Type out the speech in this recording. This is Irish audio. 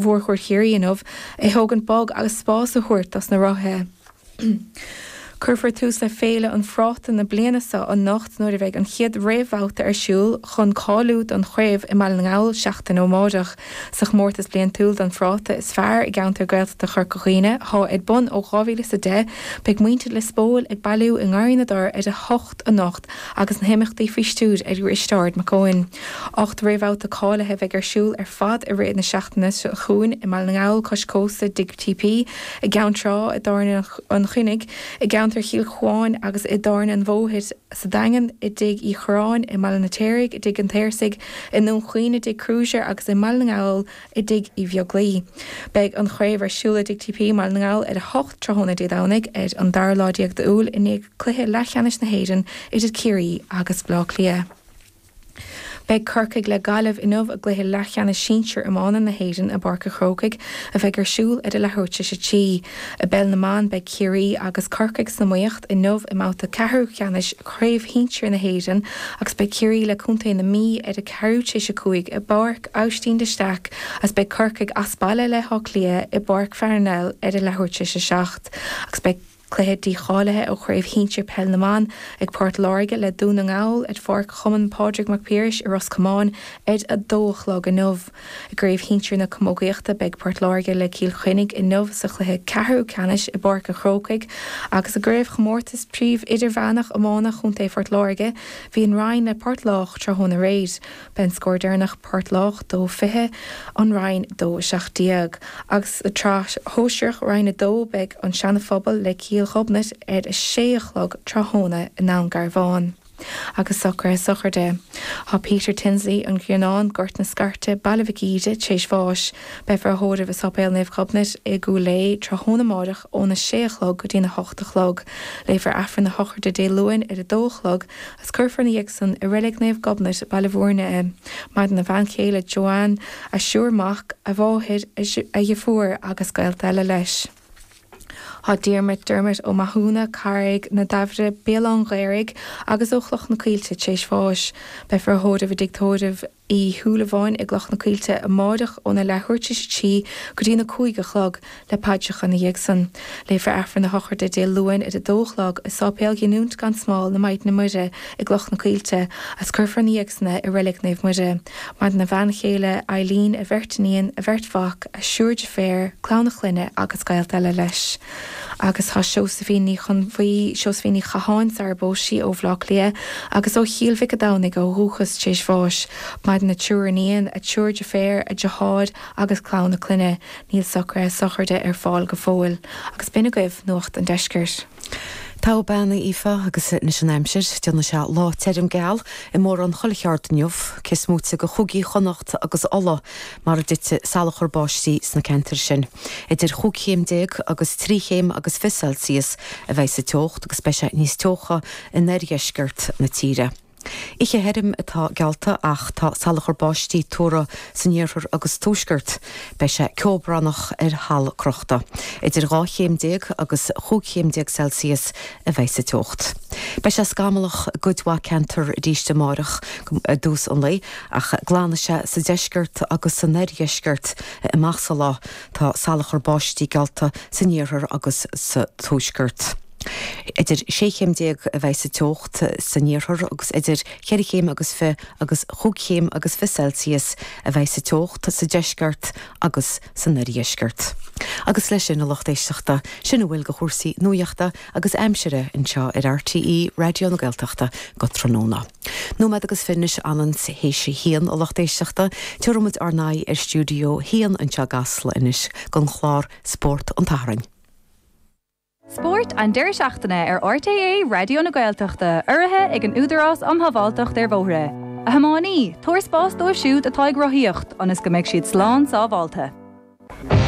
Mhórchuaird Chiarraí inniu, a thógaint bog agus spás a thabhairt dos na rothaithe. Cuirfear tús le Féile an Phráta na bliana seo anocht nuair a bheidh an chéad réamhbhabhta ar siúl chun cáiliú don chraobh i mBaile na nGall seachtain ó amárach sa chomórtas bliantúil don phráta is fearr i gceantar Gaeltachta Chorca Dhuibhne atá ar bun ó 2010. Beidh muintir Lios Póil ag bailiú i nGarraí na dTor ar a hocht anocht agus na himeachtaí faoi stiúir ag Risteárd Mac Eoin. Ocht réamhbhabhta cáilithe a bheidh ar siúl ar fad i rith na seachtaine seo chugainn, i mBaile na nGall cois cósta i dTigh TP, i gCeann Trá i dTábhairne an Chuinnigh, i gceantar Chill Chuáin agus i dTábhairne an Bhóthair sa Daingean, i dTigh Uí Churráin i mBaile an Fheirtéaraigh, i dTigh an tSaorsaigh i nDún Chaoin, i dTigh Kruger agus i mBaile na nGall. i dTigh Uí Bheaglaoich. Beidh an chraobh ar siúl i dTigh TP i mBaile na nGall ar a hocht tráthnóna Dé Domhnaigh ar an dara lá déag d'Iúil i ndiaidh cluiche leathcheannais na hÉireann idir Ciarraí agus Baile Átha Cliath. Beidh Corcaigh le Gaillimh inniu i gcluiche leathcheannais sinsir iomána na hÉireann i bPáirc an Chrócaigh a bheidh ar siúl ar a leathuair tar éis a trí. I bpeil na mban beidh Ciarraí agus Corcaigh san iomaíocht inniu i mbabhta ceathrú ceannais chraobh shinsir na hÉireann agus beidh Ciarraí le contae na Mí ar a ceathrú tar éis a cúig i Austin de Staic agus beidh Corcaigh as baile le hÁth Cliath i bPáirc Pharnell ar a leathuair tar éis a seacht agus beidh cluiche dícháilithe ó chraobh shinsir peil na mban ag Port Láirge le Dún na nGall ar Pháirc Chumann Pádraig Mac Piarais i Ros Comáin ar a dó a chlog inniu. I gcraobh shinsir na camógaíochta beidh Port Láirge le Cill Chainnigh inniu sa chluiche ceathrú ceannais i bPáirc an Chrócaigh agus i gcraobhchomórtas príomh-idirmheánach iomána Chontae Phort Láirge bhí an Rinn le Port Lách tráthnóna aréir B'é an scór deireanach Port Lách, dó fiche, An Rinn, dó a seacht déag, agus sa tsraith shóisearach, Roinn a dó, beidh An Seana Phobal le Cill Ghobnait ar a sé a chlog tráthnóna i nDún Garbhán. Agus socraithe sochraide, thá Peter Tinsley, An Grianán, Gort na Scairte, Baile Mhic Íre, tréis bháis. Beifear á thórramh i Sáipéal Naomh Ghobnait i gCúil Aodh tráthnóna amáireach óna sé a chlog go dtína hocht a chlog. Léifear Aifreann a shochraide Dé Luain ar a dó a chlog Is cuirfear ina dhiaidh san i Reilig Naomh Gobnait, Baile Mhúirne é. Maireann a bhean chéile Joanne, a thriúr mac, a mháthair, a dheirfiúr agus gaolta eile leis. Thá Diarmuid, Dermot, Ó Mathúna, Carraig na Damhaire, Béal Átha an Ghaorthaidh, agus ó Chloch na Coillte, tréis bháis. Beifear á thórramh i dtigh tórraimh. Uí Shúilleabháin i gCloch na Coillte amáireach óna leathuair tar éis a trí go dtína cúig a chlog, le paidreacha ina dhiaidh san. Léifear Aifreann a shochraide Dé Luain ar a dó a chlog i Sáipéal Ghiniúint gan Smál na Maighdine Muire i gCloch na Coillte, agus cuirfear ina dhiaidh san é i Reilig Naomh Muire. Maireann a bhean chéile, Eileen, a bheirt iníon, a bheirt mhac, a thriúr deirféar, clann a chlainne agus gaolta eile leis. agus tá Seosaimhín Ní Chonbhuí, Seosaimhín Ní Chatháin, sarar phós sí ó Bhaile Átha Cliath agus ó Chill Mhic a' Domhnaigh ó dhúchas tar éis bháis. Maireann a triúr iníon, a triúr deirféar, a deartháir agus clann a clainne. Níl socruithe sochraide ar fáil go fóill. Agus b'in agaibh Nuacht an Deiscirt. Togha bean a Aoife agus anois an aimsir, déanfaidh sé lá tirim geal i mórán chuile cheard inniu, cé is moite de Chúigí Chonnacht agus Uladh, mar a dtitfidh salachar báistí sna ceantair sin. Idir chúig chéim déag agus trí chéim agus fiche Celsius a bheidh sa teocht agus beidh sé níos teocha in oirdheisceart na tíre. Oíche thirim atá geallta ach tá salachar báistí tuartha san iarthar agus tuaisceart. Beidh sé ceobhránach ar thalamh crochta. Idir dhá chéim déag agus chúig chéim déag Celsius a bheidh sa teocht. Beidh sé scamallach i gcuid mhaith ceantar arís amárach i dtús an lae ach glanfaidh sé sa deisceart agus san oirdheisceart. amach sa lá. Tá salachar báistí geallta san iarthar agus sa tuaisceart. Idir sé chéim déag a bheidh sa teocht san iarthar agus idir cheithre chéim agus fiche agus chúig chéim agus fiche Celsius a bheidh sa teocht sa deisceart agus san oirdheisceart. Agus leis sin, a lucht éisteachta, sin a bhfuil de chúrsaí nuachta agus aimsire anseo ar RTÉ Raidió na Gaeltachta go tráthnóna. Nóiméad agus fiche anois an t-am théis a haon a lucht éisteachta. Tabharfaidh muid ár n-aghaidh ar stiúideo haon anseo i gCasla anois don chlár Spórt an tSathairn. Spórt an deireadh seachtaine ar RTÉ Raidió na Gaeltachta, urraithe ag an Údarás um Shábháilteacht ar Bhóithre. A thiománaí, tabhair spás dóibh siúd atá ag rothaíocht ionas go mbeidh siad slán sábháilte.